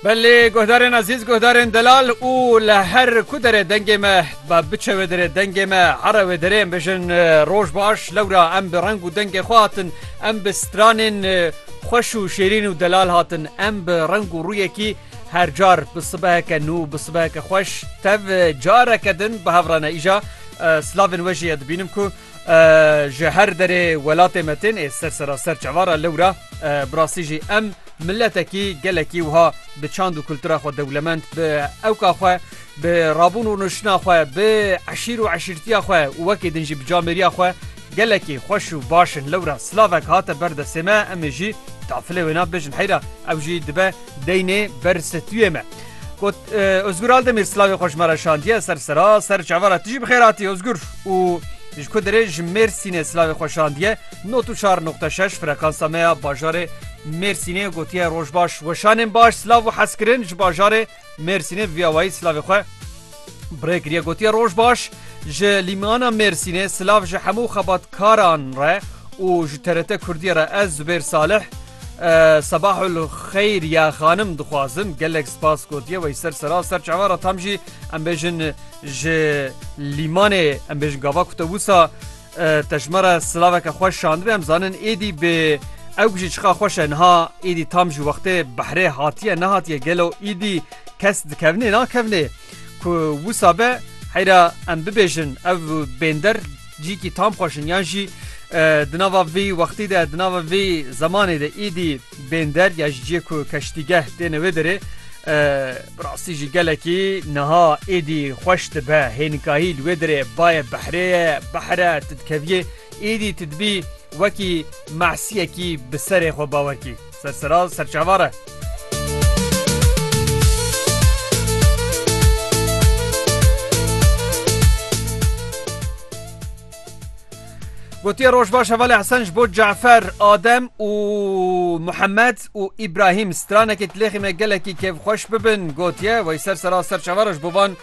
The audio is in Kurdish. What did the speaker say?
Belê guhdarên ezîz, guhdarên delal û li her ku derê dengê me ba biçe wê derê dengê me here wê derê em bijin roj baş lewra em bi reng û dengê xwe hatin em bi stranên xweş û şêrîn û delal hatin em bi reng û rûyekî her car bi sibeheke nû bi sibeheke xweş tev careke din bi hev re ne îja silavên we jî ye dibînim ku Ji her derê welatê me tên ê ser seraser çavara lewra bi rastî jî em miletekî gelekî wiha bi çand û kultura xwe dewlemend bi ewka xwe bi rabûn û nuştina xwe bi eşîr û eşîrtiya xwe û wekî din jî bi camêriya xwe gelekî xweş û baş in lewra silavek hate ber desê me em ê jî tafilê wêna bêjin heyra ew jî dibe Deynê ber stüyê me. Got Özgür Aldemir slavê xweş me re şandiye ser sera ser çava re tijî bixêratî Özgür û ji ku dirê ji Mêrsînê slavê xwe şandiye not û çar nokta şeş frekansa me ya bajarê Mêrsînê gotiye rojbaş weşanên baş slav û hezkirin ji bajarê Mêrsînê viyawayî slavê xwe Birê kiriye gotiye roj baş ji lîmana Mêrsînê silav ji hemû xebatkaran re û ji TRT Kurdiyê re ez Zubêr Salih Sebahul xeyr ya xanim dixwazim gelek spas gotiye wey ser sera ser çavan re tam jî em bêjin ji lîmanê em bêjin gava ku te wisa Te ji me re silaveke xweş şandibê em zanin êdî bi ew bijî çiqa xweş e niha êdî tam ji wextê behrê hatiye nehatiye gelo êdî kes dikevnê nakevnê ku wisa be heyra em bibêjin ev bênder cîkî tam xweşin yan jî di nava vî wextî de di nava vî zemanê de êdî Bênder ya ji ciyê ku keştîgeh têne wê derê bi rastî jî gelekî niha êdî xweş dibe. Hênikahî li wê derê bayê behrê ye, behr e, tu dikeviyê êdî tu dibî wekî mahsiyekî bi serê xwe bawer kî. Serseraz serçavar e. Gotiye Rojbaş Hevalê Hesen ji bo Cafer, Adem û Muhemed û Îbrahîm stranekê dilêxî me gelekî kêfxweş bibin gotiye wey ser sera serçavara ji bo van